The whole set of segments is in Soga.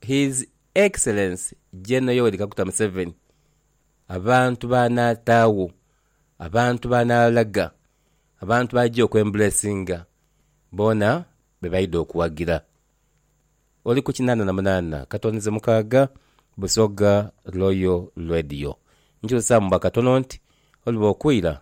His Excellence General Yoweri Kaguta Museveni abantu b'anaataagho, abantu b'anaalaga, abantu b'aja okwembulesinga boona be baidha okuwagira. Oli ku kinaana na munaana katonize mukaaga Busoga Royal Radio. Nkyusaamu bwa katono nti oliba okwira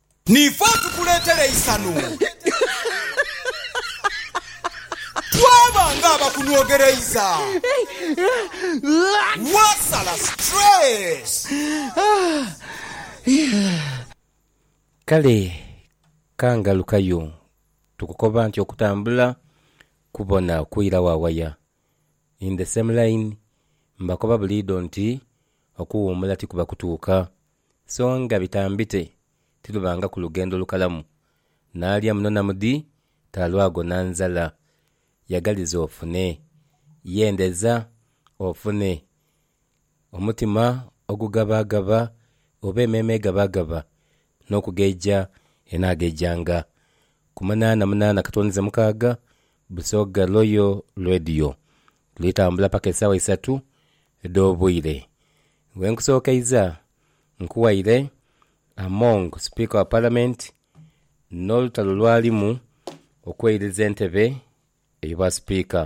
Niife atukuleetera eisanhu. Twaba ng'abakunwogereiza. Wasala stress. Kale ka ngalukayo. Tukukoba nti okutambula kubona kwira wa waya. In the same line, mbakoba buliidho nti okuwuumula tikuba kutuuka. so nga bitambite tilubangaku lugendo lukalamu, naalya muno na mudi talwago na nzala. Yagaliza ofune, yendeza ofune, omutima ogugabaagaba oba emeeme egabaagaba n'okugeja enaagejanga. Ku munaana munaana katwonize mukaaga, Busoga Royal Radio lwitambula paka esaawa isatu edh'obwire. Bwenkusookeiza nkuwaire Among Sipiika wa Palamenti n'olutalo lwalimu okweiririza entebe eyo bwa Sipiika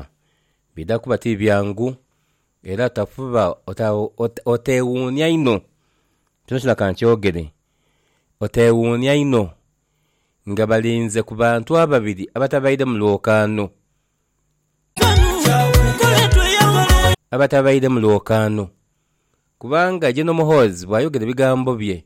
bidha kuba ti byangu era otafuba oteewuunia inho kyonakyona ka nkyogere oteewuunia inho nga balinze ku bantu ababiri abatabaire mu lwokaano. Abatabaire mu lwokaano. Kubanga ye n'Omuhoozi bw'ayogera ebigambo bye